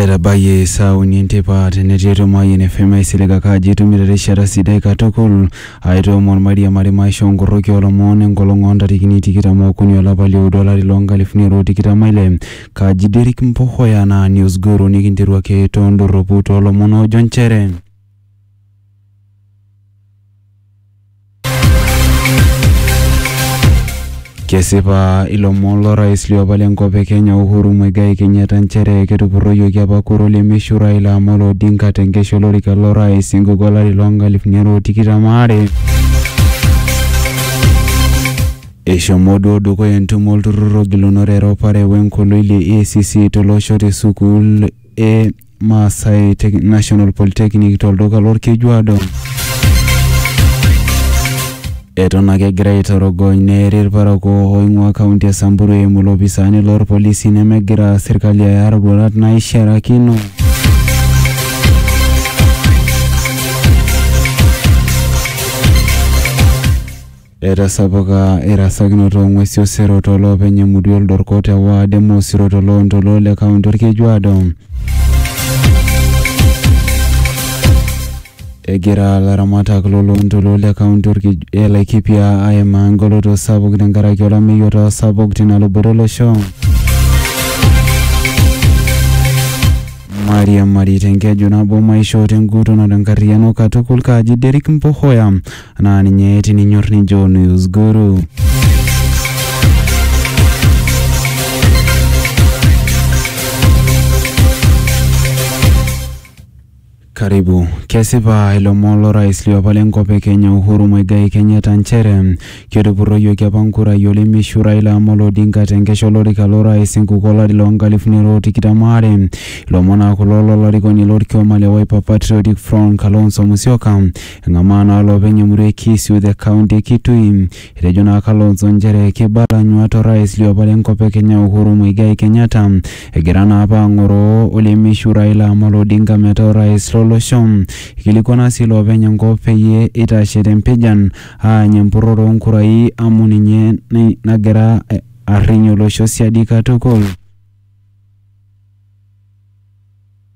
etabayie saa uni enteipa tenetii etomoayian FM aisilig ake ajo itumito erishata sidai katukul aitoomon mairiamari maisha onkoroki olomon enkolong ontarikini tikitam okuni olapa lioudo olari lonkalifuni are otikitam aile kaji Derrick Mpohoya naa News Guru nikinteru ake tondorropu tolomon oojo nchere Kesipa ilomon lorais liopa lenkop e Kenya Uhuru Muigai Kenyatta nchere ketupurroyioki apa kura olemeishu Raila Amolo Odinga tenkesha olorika lorais enkuku olari loo nkalifuni are o tikitam aare. Eshomo duo dukuya entumo olturrur ogilunore eropare wenkoloi le EACC tolosho te sukuul e Maasai Tech- National Polytechnic tolduka lorkejuado. Eton ake egira aitorogony neeri irparakuo oing'ua kaunti e Samburu eimu ilopisaani lorpolisi nemegira serkali aya roruat naishiarakino. Etasapuka erasakinoto oo ng'uesi osero too loopeny emurua Oldorko te waad e Mosiro to loontoluo le kaunti Olkejuado. Egira laramatak lo loontoluo le kaunti e Laikipia aimaa engoloto sapuk tenkaraki olameyu otaa sapuk tina luboto olosho. Mairiamari tenkeju nabo maishoo tenguton o tenkarriyiano katukul, Kaji Derrick Mpohoya. naa ninye tininyor nijo news guru karibu kesipa ilomon lorais liopa lenkop e kenya uhuru muigai kenyatta nchere ketupurroyioki apa nkurai olemishu raila amolo odinga tenkesha olorika lorais enkuku olari loo nkalifuni are o tikitam aare ilomon aa kulo lolarikoni lorkioma le wiper patriotic front kalonzo musyoka Eng'amaa naa loopeny emurua e Kisiu te kaunti e Kitui. Etejo naa Kalonzo nchere keibala nyuat o rais liopa le nkop e Kenya Uhuru Muigai Kenyatta egira naa apa ang'oroo olemeishiu Raila Amolo Odinga metaa orais lo losho. Eikilikuana sii loopeny enkop peyie eitashe te mpijan aany empurrore oo nkurai amu ninye nagira arriny olosho siadi katukul.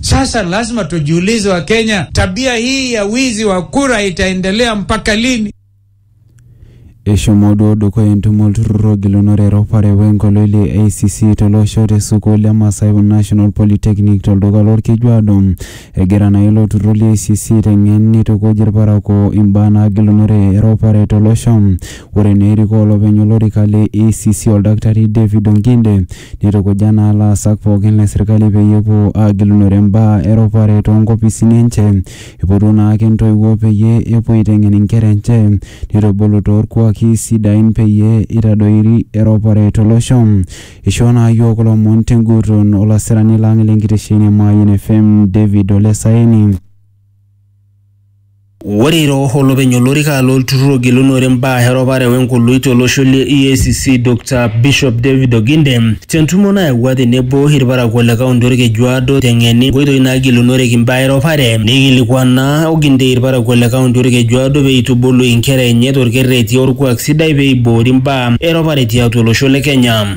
Sasa lazima tujiulize, wa Kenya, tabia hii ya wizi wa kura itaendelea mpaka lini? eshomo duo dukuya entumo olturrur ogilunore eropare wenkoloi le acc tolosho te sukuul e Masai National Polytechnic tolduka lorkejuado egira naa ilo turrur le acc aiteng'en neitukuj irparakuo imbaa naagilunore eropare tolosho ore naa erikoo olopeny olorika le acc oldakitari David Onginde Neitukuja naa laasak pooki le sirkali peyie epuo aagilunore mbaa e ropare too nkopisini enche. Eipotuo naa ake ntoiwuo peyie epuo aiteng'en nkera enche neitubulu too lkuaki sidain peyie eitadoiri eropare to losho. Eishoo naa yiok kulo omon te nguton olasirani lang le nkitesheni e Mayian FM David Ole Saeni. Ore ira olopeny olorika lolturrur ogelunore mbaa eropare wenkoloi tolosho le EACC Dr Bishop David Oginde tentumo nayawua tenebo ilparakuo le kaunti Olkeju Aado teng'eni nkoitoi naagelunoreki mbaa eropare neikilikuana Oginde ilparakuo le kaunti Olkeju Aado pee eitubulu inkera enye tolkerreti olkuak sidai pee eiboori mbaa eropare tiatua olosho le Kenya.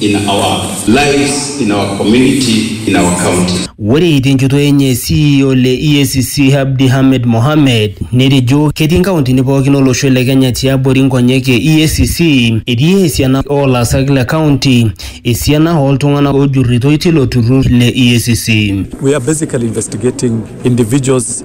in our lives, in our community, in our county. Ore tenchoto enye CEO le EACC Abdi Hamed Mohamed netejo ketii nkauntini pookin olosho le Kenya tiabori nkonyek e EACC etii esiana oo laasak le kaunti esiana oo ltung'anak oojurritoi tilo turrur le EACC. We are basically investigating individuals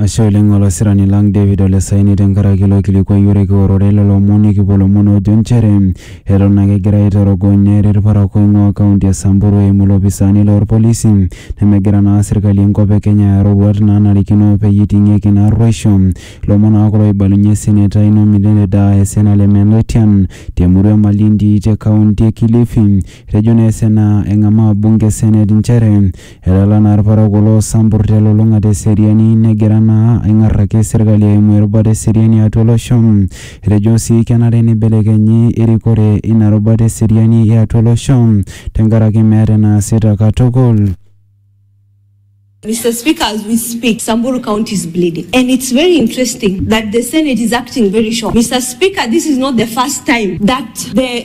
Ashe oleng olasirani lang David Ole Saini tenkaraki ilo kilikuai ore kiorore lelo omon nikipuo ilomon oojo nchere eton ake egirai aitorogony neeri ilparakuo oing'uaa kaunti e Samburu eimu ilopisaani loo lpolisi nemegira naa serkali e nkop e Kenya aya iroruat naanarikino peyie eiting'ieki ina arruoisho. Ilomon naa kulo oibalunye eseneta Ino Milele Daa esena le Meloitian te murua e Malindi te kaunti e Kilifi. Etejo naa esena eng'amaa bunge e senet nchere Etala naa ilparakuo loo Sampur te lulung'ata e seriani negira naa aing'ar ake serkali eimu erubata e seriani atua olosho. Etejo sii kenare neibelekenyi erikore ina rubata e seriani e atua olosho tenkaraki meeta enaasita katukul. Mister speaker as we speak samburu county is bleeding and it's very interesting that the senate is acting very shocked Mister speaker this is not the first time that the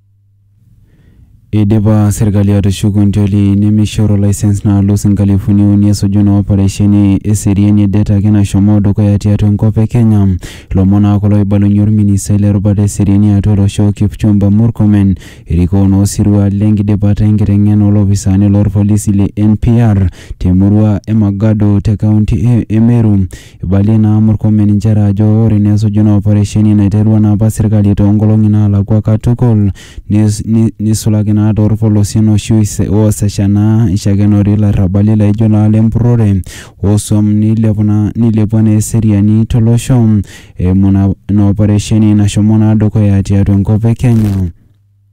Eidipa serkali atushuku nteli nemeishoru lisens naalus inkalifuni uni esuju ina oparesheni eseriani e det ake nashomo dukuya tiatua enkop e Kenya. Ilomon naa kulo oibalunye olministai le rubata e seriani e atua olosho Kipchumba Murkomen erikoo naa osirua le nkidipata e nkiteng'ena oo lopisaani loo lpolisi le NPR te murua e Magadu te kaunti e Meru. Eibalie naa Murkomen inchere ajo ore ineesuju naa oparesheni naiterua naa apa serkali too nkolong'i naalakua katukul neisulaki naa too lpolosien oshi oosesha naa eishakenori ilarrabali laaijo naa ile mpurrore oo suam neilepua naa eseriani to losho eimu naa ina oparesheni nashomo naa dukuya tiatua enkop e Kenya.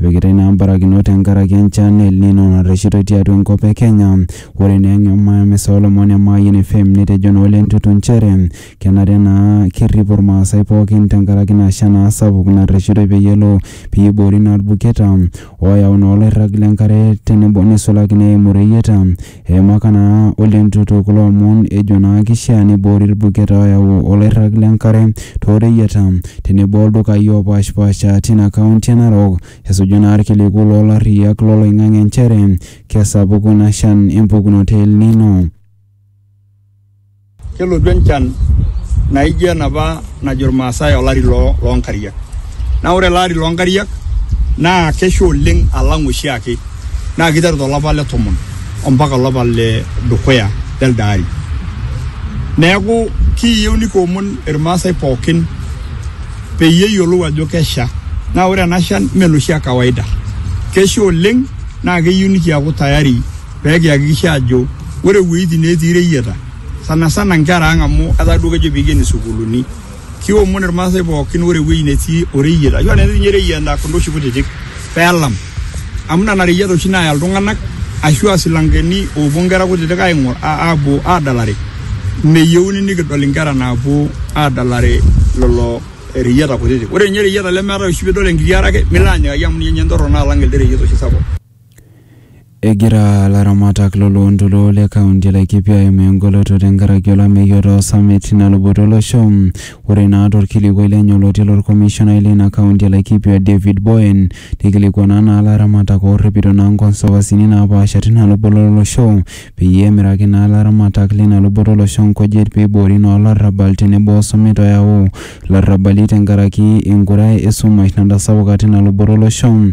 Epikitai naa mbarakinot tenkaraki enchan e El Nino narreshitoi tiatua enkop e Kenya. Ore naa eng'emamisa oolomon e Mayian FM netejo naa Ole Ntutu nchere kenare naa kerrip Ilmaasai pooki tenkaraki ina shan naa sapuk narreshitoi peyie elo peyie eiboori naa ilbuketa ooyau naa oloirrag le nkare tenebo neisulaki naa eimu ireyieta Eimaka naa o lentutu kulo omon ejo naa keishaa neiboori ilbuketa ooyau olairrag le nkare too reyieta tenebo o ldukai oopaashpaasha tina kaunti e Narok esuju naa ilkiliku loo larriyiak lo loing'ang'e nchere kesapuku ina shan e mpukunoto e El Nino. Kelotu enchan naijo enapa najo Irmaasai olari loo nkariak. Naa ore ele ari loo nkariak naa kesha oleng alang oshiake. Naa keiteru tolapa le tomon ompaka olapa le dukuya lelde ari. Neeku kiiyieu nikiomon Irmaasai pookin peyie eyiolou ajo kesha. Naa ore ena shan mee enoshi e kawaida. Kesha oleng naa keyieu nikiaku tayari pee kihakikisha ajo ore iwuejitin netii ireyieta sana sana nkera ang amu etaa duo kejo piikeni sukuuluni kiomon irmaasai pookin ore ewueji netii oreyiet ashu enetii ninye ireyieta kunda oshi kutitik peelam amu nena reyieta oshi naaya iltung'anak ashu aa silankeni oopuo inkera kutitik aing'or aapuo aadalare meyieuni nikidol inkera naapuo aadalare lelo reyieta kutitik ore ninye ireyieta lemeetae oshi piidol enkiti are ake milo anyikaki amu ninye entorrono alang elde reyiet oshi sapuk. Egira laramatak lo loontoluo le kaunti e Laikipia aimaa engoloto tenkaraki olameyu otaa osamet tina luboto olosho. Ore naa torkilikuai lenye olotii lorkomishonai leina kaunti e Laikipia David Boen neikilikuana naa laramatak oorripito naa nkonsovasini naapaasha tina luboto olosho peyie emiraki naa laramatak leina luboto olosho nkujit peiboori naa olarrabal tenebo osumet oyau larrabali tenkaraki enkura esumash natasapuka tina luboto olosho.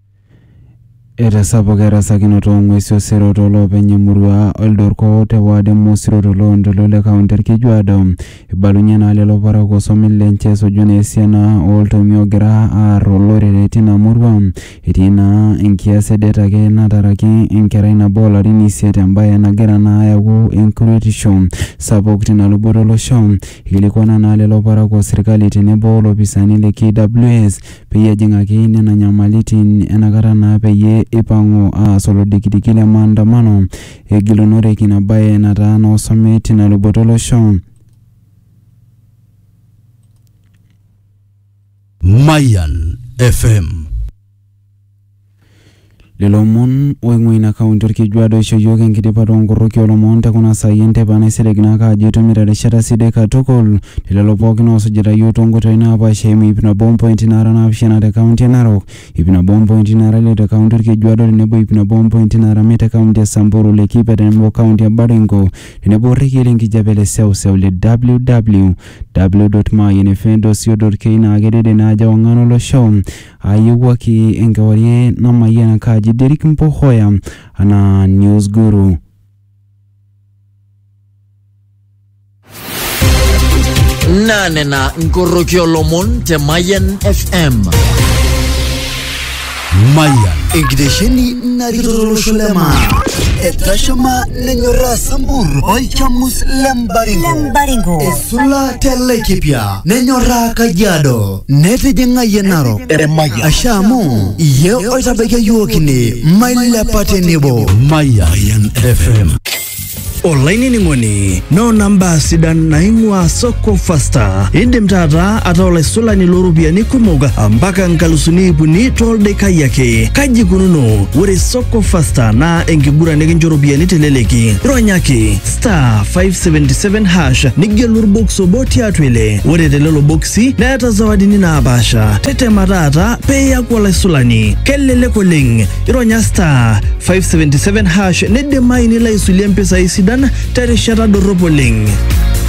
Etasapuka erasakinoto oo ng'uesi osero too loopeny emurua Oldorko te ward e Mosiro to loo ntoluo le kaunti Olkejuado. Eibalunye naa lelo parakuo osomin lenche esuju naa esiana oo ltomia oogira aar olorere tina murua. Etii naa enkias e det ake nataraki enkerai nabo oo larin isiet embae nagira naa ayau enkuretisho sapuk tina luboto o losho. Eikilikuana naa lelo parakuo serkali tenebo o lopisani le KWS peyie ejing'aki nena nyamalitin enakata naa peyie eipang'u aas olodikidiki le maandamano egilunoreki ina bae nataa noosomi tina luboto olosho. Mayan FM. Lelo omon oing'ua ina kaunti olkejuado oisho iyiook enkidipa too nkoroki oo lomon te kuna saai e nteipa naisilig naa ake ajo itumito erishata sidai katukul te lelo pooki oosujita iyiook too nkoitoi naapaasha eimu iip nabo o mpointi naara naapishana te kaunti e Narok, iip nabo o mpointi naara ile te kaunti olkejuado tenebo iip nabo o mpointi naara miet te kaunti e Samburu, Laikipia tenebo o kaunti e Baringo tenebo o rrekie le nkijape le seuseu le www. Mayian fm dot co dot ke Naa kedede naa ajo ewang'an olosho. Aayewuaki enkewarie namayian enkaaji Derrick Mpohoya anaa News Guru. Naa nena nkoroki olomon te Mayian FM. Mayian. Enkitesheni narikito tolosho le maa. Etashama nenyorraa Sambur olchamus le Mbaringo. Esula te Laikipia nenyorraa Kajiado. netijing'a yie narok Eremaya. ashe amu iye oitabaikia yiook ine mailepa tenebo Mayan FM. olainining'oni noona mbaa sidan naing'ua soko fasta indim taata ataa olaisulani looropiyiani kumok mpaka nkalusuni iip uni toldekai ake kaji ikununo ore soko fasta naa enkiguran nikincho ropiyiani teleleki ronyaki star 577 hash nigelu orbox obo tiatua ile ore telelo boksi neeta zawadini naapaasha tetema taata pee iyaku olaisulani kelelek oleng ironya star 577 hash nidimayu nilo aisulie mpisai sidan terishata dorrop oleng